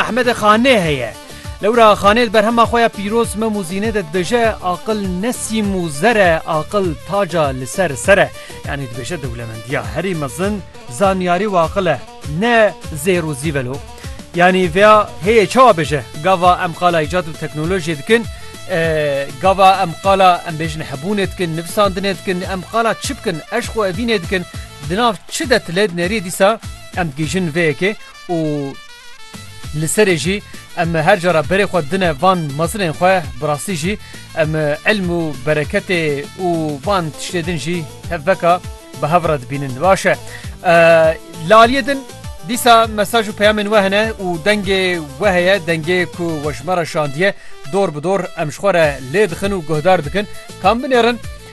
Ehmedê Xanê heye. Lewra Xanê di berhema xwe ya Pîroz Mem û Zînê de dibêje, Aqil ne sîm û zer e, aqil taca li ser ser e. Yanî dibêje dewlemendiya herî mezin zanyarî û aqil e, ne zêr û zî velo. Yanî vêya hêyê çawa bêje? Gava em qala îcat û teknolojiyê dikin, gava em qala em bêjin hebûnê dikin, nivîsandinê dikin, em qala çi bikin, eşq û evînê dikin, di nav çi de ti lê dinêrî dîsa em digihîjin vê yekê. û li serê jî em her cara berê xwe dine van mezinên xwe bi rastî jî em ilm û bereketê û van tiştê din jî hev veka bi hev re dibînin baş e laliyê din dîsa mesaj û peyamên we hene û dengê we heye dengê ku we ji me re şandiye dor bi dor em ji xwe re lê dixin û guhdar dikin kam binêrin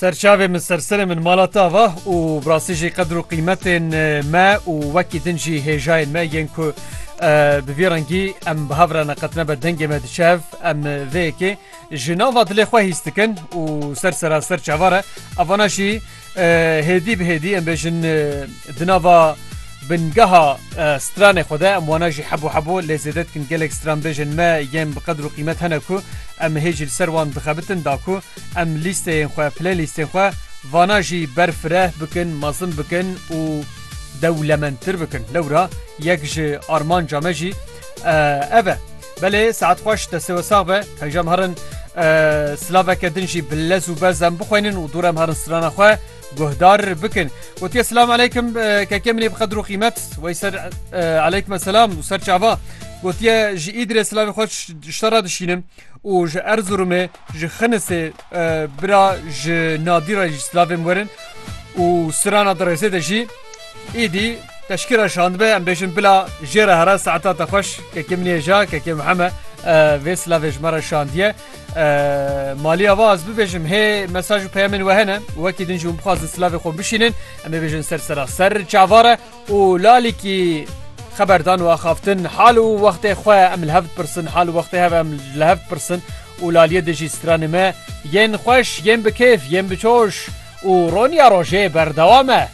Serçavê min serserê min mala te ava û bi rastî jî qedir û qîmetên me û wekî din jî hêjayên me yên ku bi vî rengî em bi hev re neqet nebe dengê me diçe hev em vê yekê ji nava dilê xwe hîs dikin û ser sera ser çavar e evana jî Hêdî bi hêdî em bêjin di nava bingeha stranê xwe de em wana jî hebû hebû lê zêde dikin gelek stran bêjin me yên bi qedir û qîmet hene ku em hê jî li ser wan dixebitin da ku em lîsteyên xwe playlîstên xwe vana jî ber fireh bikin mezin bikin û dewlemendtir bikin lewra yek ji armanca me jî ev e. Belê saet xweş destê we sax be hêja em herin silaveke din jî bi lez û bez em bixwînin û dûrem herin strana xwe guhdar bikin gotiye silam aleykim keke minê bi qedir û qîmet wey ser aleykim selam û ser çava gotiye ji îdirê silavê xweş ji te re dişînim û ji Erzurumê Ji Xinisê bira ji Nadî re jî silavên werin û Sirana Dirêsê de jî êdî teşkîra şandbe em bêjin bila jê re here saeta te xweş kekê min yê ja kekê Muheme vê silavê ji me re şandiye maliya va ez bibêjim hê mesaj û peyemên we hene wekî din jî hûn bixwazin silavê xwe bişînin em ê bêjin ser sera ser çavare û lalîkî xeber dan û axaftin hal û wextê xwe em li hev dipirsin hal û wextê hev em li hev dipirsin û laliyê di jî stranê me yên xweş yên bi kêf yên bi coş û roniya rojê berdewam e.